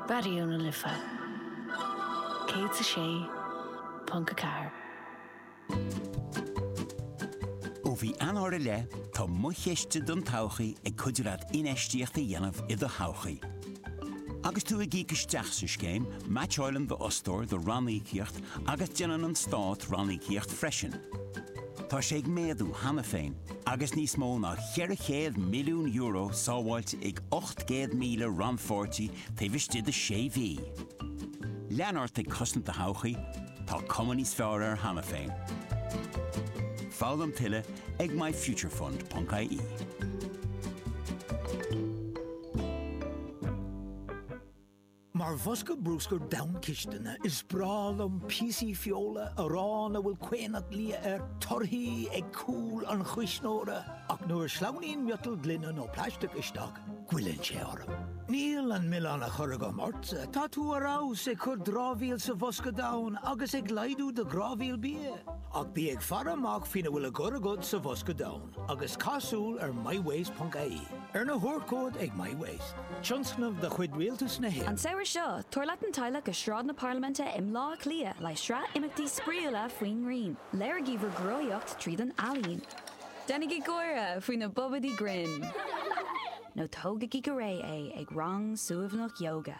Raidió na Life 106.4. Ó mhí Eanáir i leith, tá Mo Chiste don Todhchaí ag cuidiú leat infheistíocht a dhéanamh i do thodhchaí. Agus tú ag íoc isteach sa scéim, meaitseálann d'fhostóir do ranníocaíocht agus déanann an Stát ranníocaíocht freisin. Tá sé ag méadú cheana féin agus níos mó ná 400 milliún euro sábháilte ag 800,000 rannpháirtí taobh istigh de shé mhí. Lean ort ag cosaint do thodhchaí, tá cuma níos fearr air cheana féin. Foghlaim tuilleadh ag myfuturefund.ie. Mar bhosca brúscair donn cistine, is breá liom píosaí feola, arán a bhfuil caonach liath air, torthaí ag cúl an chuisneora, ach nuair a shleamhnaíonn miotal, gloine nó plaisteach isteach, goilleann sé orm. Níl an milleán á chur agam ortsa, tá tú ar fheabhas ag cur dramhaíl sa bhosca donn agus ag laghdú do dhramhaíola bia, ach bí ag faire amach faoina bhfuil á chur agat sa bhosca donn. agus cá, féach ar MyWaste.ie. Arna thabhairt chugat ag MyWaste, tionscnamh de chuid Rialtas na hÉireann. An samhradh seo, tabhair leat an teaghlach go Sráid na Parlaiminte i mBleá Cliath le sraith imeachtaí spraíúla faoin ngrian. Léirigí bhur gcruthaitheacht tríd an ealaín. Déanaigí gáire faoi na bobaidí grinn. Nó tógaigí go réidh é ag rang suaimhneach ióga.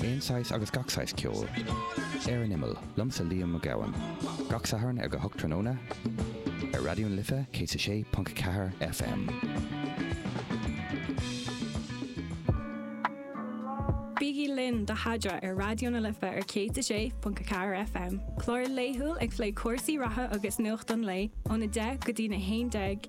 Aon saghas agus gach saghas ceoil. Ar an Imeall, liomsa Liam Mac Gabhann. Gach Satharn ag a hocht tráthnóna. Ar Raidió na Life 106.4 FM. Bígí linn do Thaidhre ar Raidió na Life ar 106.4 FM. Clár laethúil ag plé cúrsaí reatha agus nuacht an lae, ón 10 go dtí na 11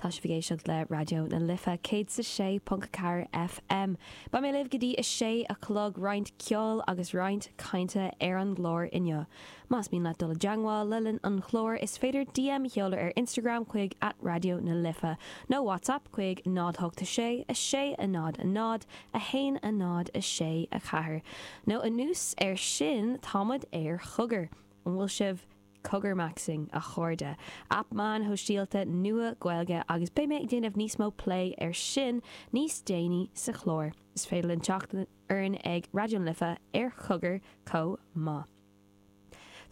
Tá sibh ag éisteacht le Raidió na Life 106.4 FM. Beidh mé libh go dtí a sé a chlog, roinnt ceoil agus roinnt cainte ar an gclár inniu. Más mian leat dul i dteangmháil le linn an chláir is féidir DM a sheoladh ar Instagram chuig at Raidió na Life nó WhatsApp chuig 08 6 6 0 0 1 0 6 4 nó anuas ar sin tá muid ar Chogar. An bhfuil sibh. Cogar maxing, a chairde! Aip meáin shóisialta nua Gaeilge agus beidh mé ag déanamh níos mó plé air sin níos déanaí sa chlár. Is féidir libh teacht orainn ag Raidió na Life ar Cogar chomh maith.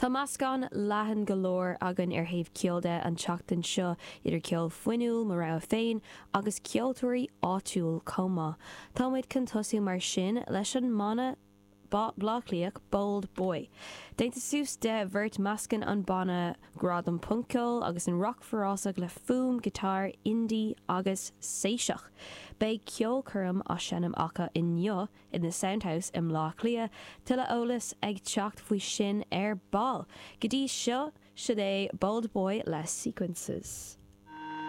Tá meascán leathan go leor againn ar thaobh ceoil de an tseachtain seo, idir cheol fuinniúil, mo rogha féin, agus ceoltóirí áitiúil chomh maith. Tá muid chun tosú mar sin leis an mbanna Bleá Cliath, Bold Boy. Déanta suas de bheirt meascann an banna grá don phunc-cheol agus an rac forásach le fuaim guitar indie agus séiseach. Beidh ceolchoirm á seinm acu inniu in The Sound House i mBleá Cliath, tuilleadh eolais ag teacht faoi sin ar ball. Go dtí seo, siod é Bold Boy le Sequences.